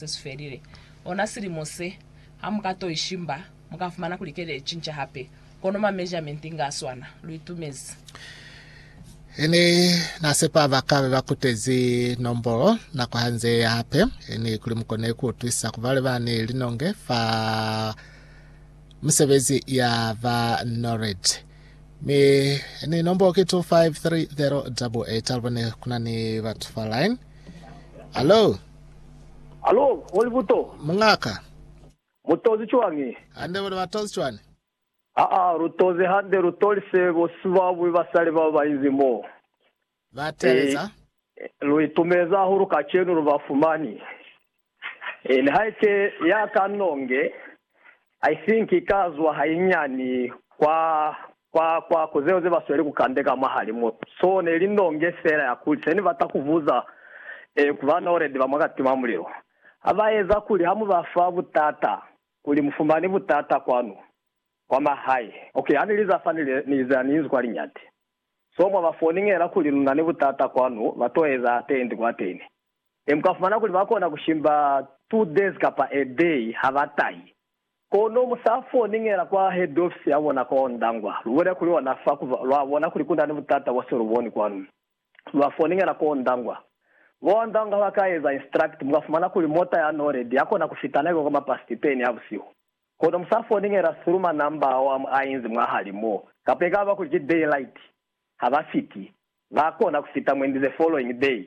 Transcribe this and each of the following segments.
se si felile ona silimo se, ha mu ka to i shimba, mu ka fumana kuli kele i cinca hape, kono ma measurement inge a swana. Lu itumezi. Ini na sepa ba ka be ba kutezi nombolo nako ha nze eya hape, ini kuli mu kone ku utwisa ku bale ba ni linonge fa misebezi ya ba NORAD. Mi ini nombolo ki 253088. Alubone kuna ni batu fa line. Hallo? Alo, muli buto? Muñaka. Mu tozi cwañi? Hande, bona ba tozi cwani? Aa, lu tozi hande, lu tolise bo sibabwi basali bao ba inzi mo. Ba teeleza. Ee, lu itumeza hahulu kacenu lu ba fumani. Ee, nihaike ya ka nonge. Haisinki ka zwa hainyani kwa, kwa, kwa ku zeo zebasweli ku kande ka mwahali mo. So, neli ndonge fela ya kuli, seni bata kuvuza, e, ku ba naledi ba mwa katima mulilo. Ha ba eza kuli ha mu ba fa butata, kuli mufumani butata kwanu, kwa mahae. Ok, ha ni li za fa, ni li, ni za ni inzi kwa liñati. So, mwa ba foningela kuli luna ni butata kwanu, ba to eza atendi kwa ateni. Ne mukafumana kuli bakona kushimba two days kapa a day habatahi. Kono musafo ningela kwa head office yabona kwa Ondangwa, lubulele kuli ona fa kuba lwabona kuli kunani butata bose luboni kwanu. Lwa foningela kwa Ondangwa. Bo Ondangwa baka eza instruct, mukafumana kuli mota ya Nored yakona kufita naiba kwa mapast ten ya busihu. Kono musafo ningela through ma number ao ainzi mwahali mo, kapa ekaba kuli ki daylight, habafiti. Bakona kufita mwendi the following day.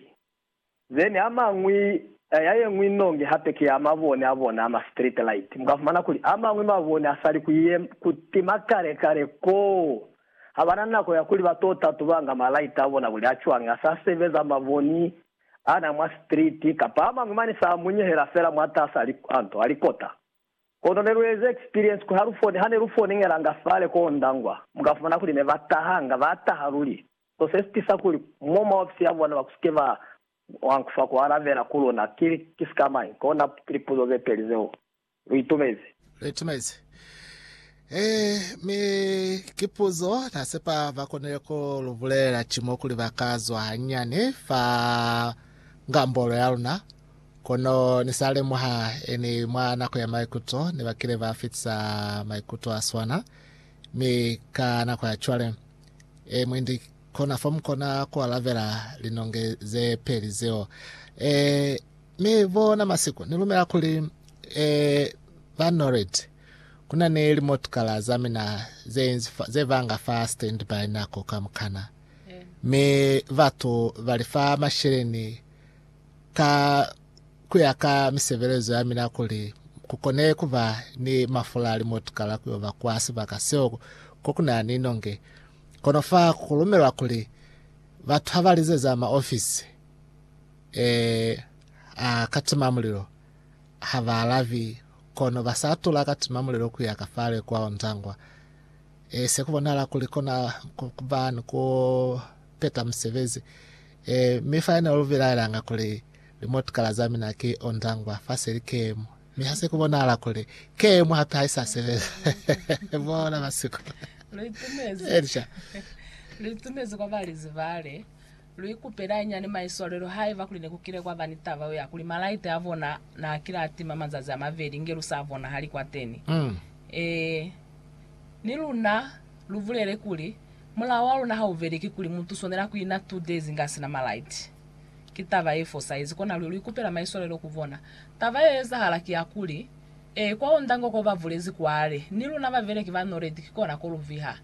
Then a mañwi, ya yeñwi nongi hape ki ya mabone a bona a ma street light. Mu ka fumana kuli a mañwi mabone a sali ku ye, ku tima kale kale koo. Ha bana nako ya kuli ba to tatubanga ma light a bona kuli a cwañi, a sa sebeza maboni ana mwa street, kapa a mañwi mane sa munyehela fela mwatasa li, a nto, a likota. Kono ne lu eza experience ku ha lu fone, hane lu foningelanga fale koo Ndangwa, mu ka fumana kuli ne ba tahanga, ba taha luli. Ku se sitisa kuli mo mwa ofisi ya bona ba ku si ke ba wang fa ku alabela ku luna, ki li ki sika mañi? Kona ki lipuzo ze peli zeo lu itumezi. Lu itumezi. Ee, mi ki puzo na sepa ba konile ku lu bulelela cimo kuli ba ka zwa hanyinyani fa ngambolo ya luna. Kono ni sa lemuha e ni mwa nako ya maikuto ne ba kile ba fitisa maikuto a swana, mi ka nako ya cwale. E, mwendi, kona fo mu kona ku alabela linonge ze peli zeo. E, mi bona masiku, ni lumela kuli, e, ba Norred, kuna ni limotukala za mina ze inzi fa, ze banga fa standby nako kamukana. Mi batu bali fa masheleni ka ku ya ka misebelezo ya mina kuli ku kone ku ba ni mafula a limotukala ku yo ba kwa sibaka seo ko ku na ni nonge. Kono fa ku lumelwa kuli batu ha ba lizeza maofisi eh, a katimamulilo ha ba alabi, kono ba sa tula katimamulilo ku ya ka fale kwa Ontangwa. Eh, se ku bonahala kuli kona ku ba ni ku peta misebezi. Ee, mi fa yena lu bilaelanga kuli, Limotikala za mina ki ondangwa, fa se li keemu. Mi ha se ku bonahala kuli, keemu hape ha i sa sebeza. Bona basikulu. Lu itumezi. Elisha. Lu itumezi kwa ba li zibale. Lu ikupela hañani maiswalelo haiba kuli ne ku kile kwa ba ni taba yo ya kuli malaite a bona na kile a tima mazazi a mabeli inge lu sa bonahali kwateni. Ee, ni luna. Lu bulele kuli, Mulao wa luna ha u veli ki kuli mutu u swanela ku ina two days inge a si na malaiti. Ki taba ye fosaizi, kona luli lu ikupela maiswalelo ku bona. Taba ye ezahala ki ya kuli, Ee, kwa onda ngo ko ba bulezi kwale, ni luna babeleki ba Noredi ki kona ko lu viha.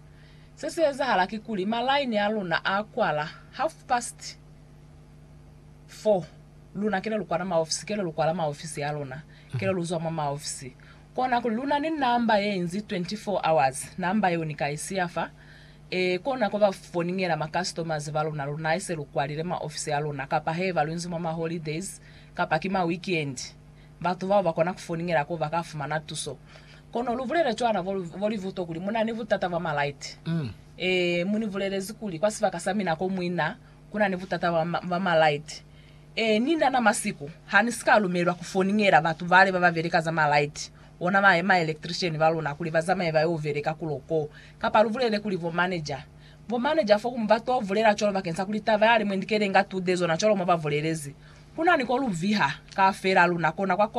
Se si ezahala ki kuli, malaini a luna a kwala half past four, luna kile lu kwana maofisi, kile lu kwala maofisi a luna, kile lu zwa mwa maofisi, Kona ku luna ni namba ye inzi 24 hours, namba yeo ni ka i siya fa. E kona ku ba foningela ma customers ba luna lu na ise lu kwalile ma ofisi a luna, kapa heba lu inzi mwa ma holidays kapa ki ma weekend. Batu bao ba kona ku foningela ko ba ka fumana tuso. Kono lu bulele cwana bo, bo Livuto kuli mu na ni butata bwa ma light. E, mu ni bulelezi kuli kwa sibaka sa mina ko mwi na, ku na ni butata bwa, bwa ma light. Ee, ni nana masiku ha ni si ka lumelwa ku foningela batu bale ba ba beleka za malaiti, ona ba ma electrician ba luna, kuli ba zamaye ba yo beleka kulo ko. Kapa lu bulele kuli bo manager, bo manager fo ku mu ba to bulela cwalo bakeng sa kuli taba yale mwe ndikele nga tude zona cwalo mwa ba bulelezi. Ku na ni ko lu viha, ka fela luna kona kwa ko.